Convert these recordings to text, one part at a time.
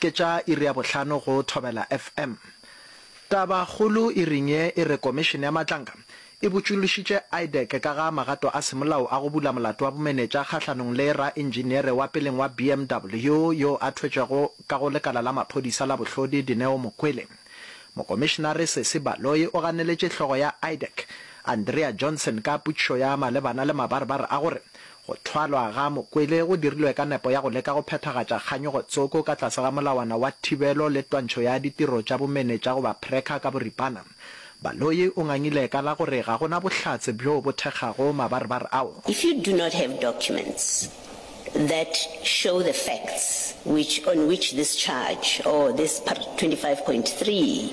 Ke tša iri ya bohlano go Thobela FM. Tabakgolo iring ye e re Komišene ya Matlanka e botšološitše IDEC ka ga magato a semolao a go bula molato wa bomenetša kgahlanong le raentšiniere wa peleng wa BMW yo a thwetšwego ka go lekala la maphodisa la bohlodi Dineo Mokwele. Mokomišenare Sesi Baloyi o ganeletše hlogo ya IDEC, Andrea Johnson ka potšišo ya malebana le mabarebare a gore Go thwalwa ga Mokwele go dirilwe ka nepo ya go leka go phethagatša kganyogo tsoko ka tlase ga molawana wa thibelo le twantšho ya ditiro tša bomenetša goba PRECCA ka boripana. Baloyi o ngangile ka la gore ga go na bohlatse bjoo bo thekgago mabarebar ao. If you do not have documents that show the facts which on which this charge or this part 25.3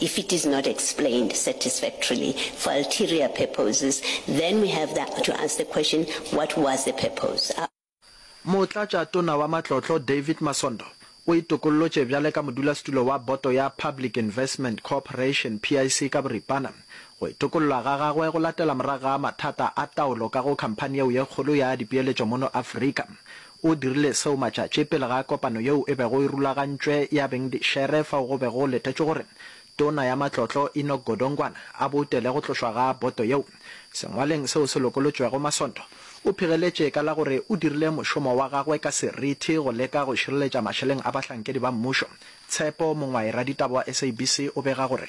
If it is not explained satisfactorily for ulterior purposes, then we have the to ask the question, what was the purpose? A. Motlatša Tona wa Matlotlo David Masondo o itokollotše bjale ka modulasetulo wa Boto ya Public Investment Corporation, PIC, ka boripana. Go itokollwa ga gagwe go latela morago ga mathata a taolo ka go khamphani yeo ye kgolo ya dipeeletšo mono Afrika. O dirile seo matšatši pele ga kopano yeo e bego e rulagantšwe ya Bengdishere fao go bego go letetšwe gore Tona ya Matlotlo Enoch Godongwana a boutele go tlošwa ga boto yeo. Sengwalweng seo se lokolotšwego Masondo o phigeletše ka la gore o dirile mošomo wa gagwe ka serithi go leka go šireletša mašeleng a bahlankedi ba mmušo. Tshepo Mongwaye raditaba wa SABC o bega gore.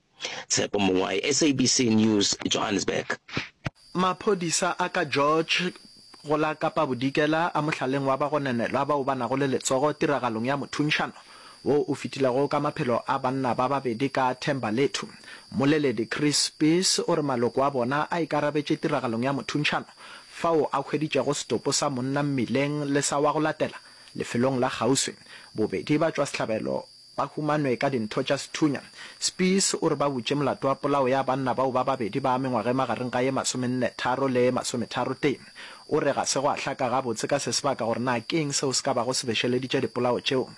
Tshepo Mongwae, SABC News, Johannesburg. Maphodisa a ka George go la Kapa Bodikela a mohlaleng wa bagononelwa bao ba nago le letsogo tiragalong ya mothunšano wo o fetilego ka maphelo a banna ba babedi ka Thembalethu. Mmoleledi Chris Spies o re maloko a bona a ikarabetše tiragalong ya mothunšano fao a hweditšego setopo sa monna mmileng le sa wa go latela lefelong la kgauswi. Bobedi ba tšwa sehlabelo ba humanwe ka dintho tša sethunya. Spies o re ba butše molato wa polao ya banna bao ba babedi ba mengwaga e magareng ga ye masomennetharo le ye masometharotee. O re ga se gwa hlaka gabotse ka sesebaka gore na ke eng seo se ka bago se bešeleditše dipolao tšeo.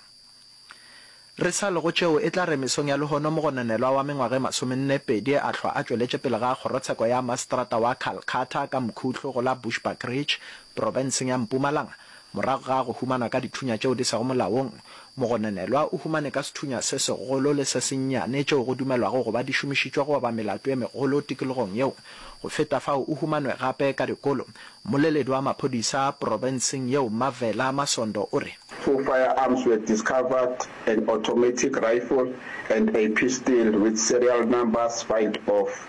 Re sa le go tšeo, e tla re mesong ya lehono mogononelwa wa mengwaga e masomennepedi a hlwa a tšweletše pele ga kgorotsheko ya maseterata wa Calcutta ka Mkhutlo go la Bushbuckridge, profenseng ya Mpumalanga, Morago ga go humanwa ka dithunya tšeo di sego molaong, mogononelwa o humane ka sethunya se segolo le se sennyane tšeo go dumelwago go ba di šomišitšwe go oba melato e megolo tikologong yeo. Go feta fao, o humanwe gape ka dikolo. Mmoleledi wa maphodisa profenseng yeo Mmavela Masondo o re. Four firearms were discovered, an automatic rifle and a pistol with serial numbers filed off.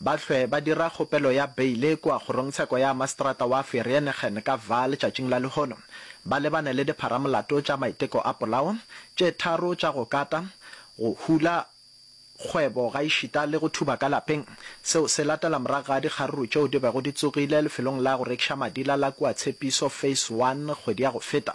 ba hlwe ba dira kgopelo ya beile kua Kgorongtsheko ya Maseterata wa Vereeniging ka Vaal letšatšing la lehono, ba lebane le dipharamolato tša maiteko a polao, tše tharo tša go kata, go hula kgwebo gaešita le go thuba ka lapeng. Seo se latela morago ga dikgaruru tšeo di bego di tsogile lefelong la go rekiša madila la kua Tshepiso Phase One kgwedi ya go feta.